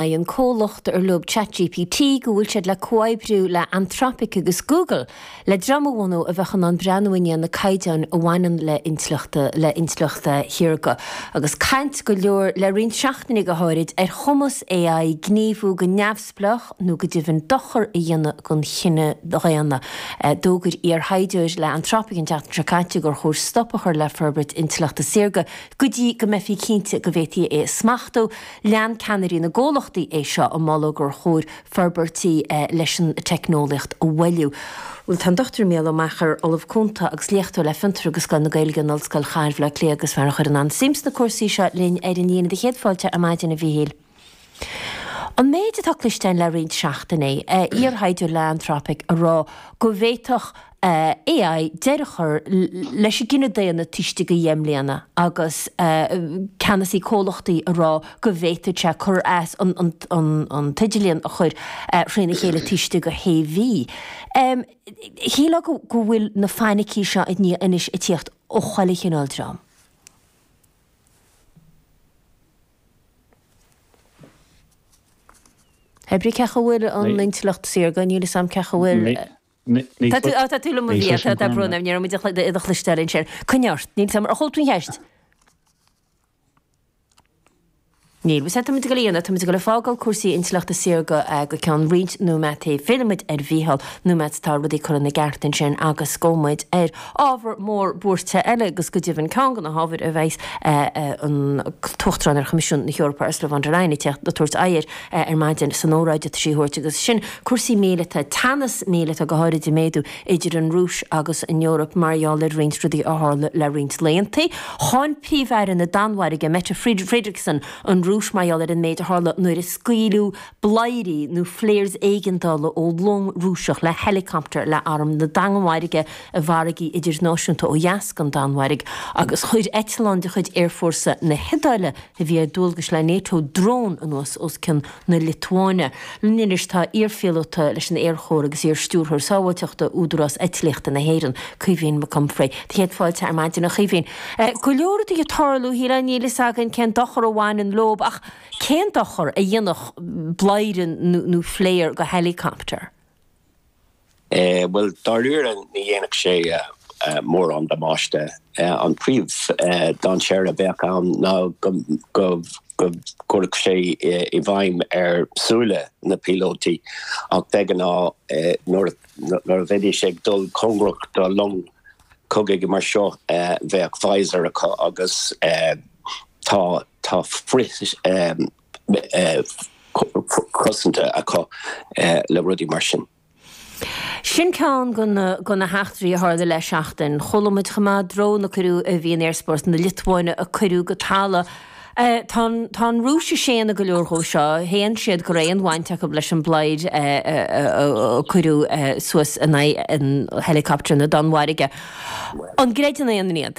Maíonn an comhlacht ar leo Chat GPT go bhfuil siad le comhoibriú le Anthropic agus Google le dream a bhunú a bheadh in ann breathnú i ndiaidh na caighdeáin a bhaineann le intleachta le intleacht shaorga agus caint go leor le roinnt seachtainí go háirid ar chumas AI gníomhú go neamhspleách nó go deimhin dochar a dhéanamh don chine dhaonna. D'fhógair iarthaighdeoir le Anthropic an tseachtain seo caite gur chóir stop a chur le forbairt intleachta saorga go dtí go mbeifí cinnte go bhféadfaí é a smachtú. Lean ceannairí na gcomhlachtaí é seo, ag moladh gur chóir forbairtí leis an teicneolaíocht a mhoilliú. Tá an Dr Mícheál Ó Meachair, Ollamh Cúnta agus Léachtóir le Fiontar agus Scoil na Gaeilge in Ollscoil Chathair Bhaile Átha Cliath agus is fear a chuireann an-suim sna cúrsaí seo, linn ar an líne. Do chéad fáilte ar maidin, a Mhíchíl. An méid atá cloiste le roinnt seachtainí, iarthaighdeoir le Anthropic ag rá go bhféadfadh AI deireadh a chur leis an gcine daonna taobh istigh de dheich mbliana agus ceannasaí comhlachtaí ag rá go bhféadfadh sé cur as an t-idirlíon a chur thréna chéile taobh istigh de shé mhí. Shílfeá go bhfuil na fainicí seo ag AI anois ag tíocht ó chuile chineál dream. Ar bhealach ceacha bhfuil an intleacht saorga, níl fhios a'm ceacha bhfuil. Tá tú, tá tú liom mo bhia, tá, tá brón agam, ní raibh muid ag, do chloisteáil ansin. Coinnigh ort, níl, tá, ar chuala tú an cheist? Níl, bhfuil sé, tá muid ag goil, tá muid ag goil ag fágáil cúrsaí intleachta saorga go ceann roinnt nóiméadaí, fillfidh muid ar Mhícheál, nóiméad atá rudaí curtha ina gceart ansin agus gabhfaidh muid ar ábhar mór buairte eile agus go deimhin ceann de na hábhair a bheas an tUachtarán ar Choimisiún na hEorpa Ursula von der Leyen ag tabhairt aghaidh air, ar maidin san óráid atá sí le tabhairt, agus sin cúrsaí míleata, teannas míleata, go háirid ag méadú idir an Rúis agus an Eoraip mar gheall ar roinnt rudaí a tharla le roinnt laethanta. Cháin Príomh-Aire na Danmhairge, Mette Frederiksen, an Rúis mar gheall ar an méid a tharla nuair a scaoileadh bladhairí nó flares éigeandála ó long Rúiseach le heileacaptar le arm na Danmhairge i bhfarraigí idirnáisiúnta ó dheas den Danmhairg, agus chuir eitleán de chuid aerfhórsa na hIodáile a. a bhí ar dualgas le Nato drón anuas os cionn na Liotuáine. Linn anois tá iarphíolóta leis an Aer Chór agus iar-Stiúrthóir Sábháilteachta Údarás Eitlíochta na hÉireann, Caoimhín Mac Unfraidh. Do chéad fáilte ar maidin a Chaoimhín. Go leor ag tarlú, shílfeá, níl fhios againn cén dochar a bhaineann leob ach cén dochar a dhéanfadh bladhaire nó flair do héileacaptar? Bhuel, dáiríre ní dhéanfadh sé mórán damáiste. An príomh-dainséar a bheadh ann ná go gcuirfeadh sé i bhfeidhm ar shúile na bpíolótaí, ach de ghnáth nuair a bheidís ag dul cóngarach do long cogaidh mar seo bheadh visor acu agus tá frith-ionsaithe cosanta acu le rudaí mar sin. Sin ceann de na heachtraí a tharla le seachtain. Chuala muid chomh maith drón a cuireadh a bhí in aerspás na Liotuáine a cuireadh go talamh. Tá an Rúis ag séanadh go leor dhó seo. Shéan siad go raibh aon bhaint acu leis an bpléar a cuireadh suas in aghaidh helicopter na Danmhairge. An gcreideann aon duine iad?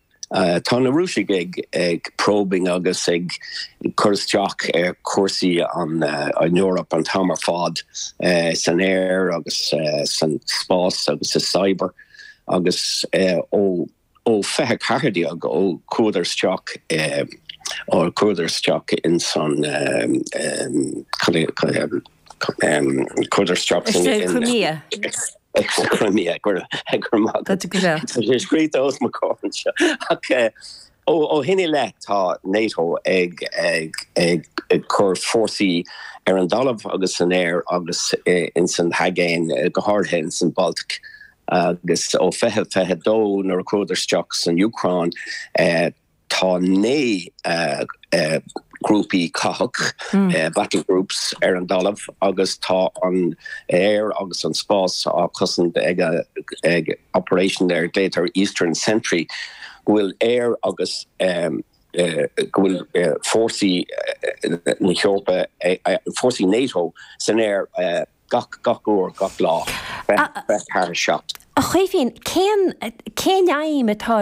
Tá na Rúisigh ag probing agus ag cur isteach ar chúrsaí an Eoraip an t-am ar fad, san aer agus san spás agus sa cyber, agus ó fiche ceathair déag, ó chuadar isteach, ó chuadar isteach ins an, cad é, chuadar isteach san, Is é an Crimea. Sa Crimea, go raibh maith agat. Tá sé scríofa os mo chomhair anseo. Ach ó shin i leith tá NATO ag cur fórsaí ar an dtalamh agus san aer agus ins an hAigéin, go háirithe ins an Bhaltaic, agus ó 2022 nuair a chuadar isteach san Úcráin, Tá naoi ngrúpaí cathach, battle groups, ar an dtalamh agus tá an t-aer agus an spás á chosaint ag operation ar a dtugtar Eastern Sentry, go bhfuil aer agus go bhfuil fórsaí na hEorpa, fórsaí Nato san aer gach uair, gach lá, fiche ceathair a seacht. A Chaoimhín, cén aidhm atá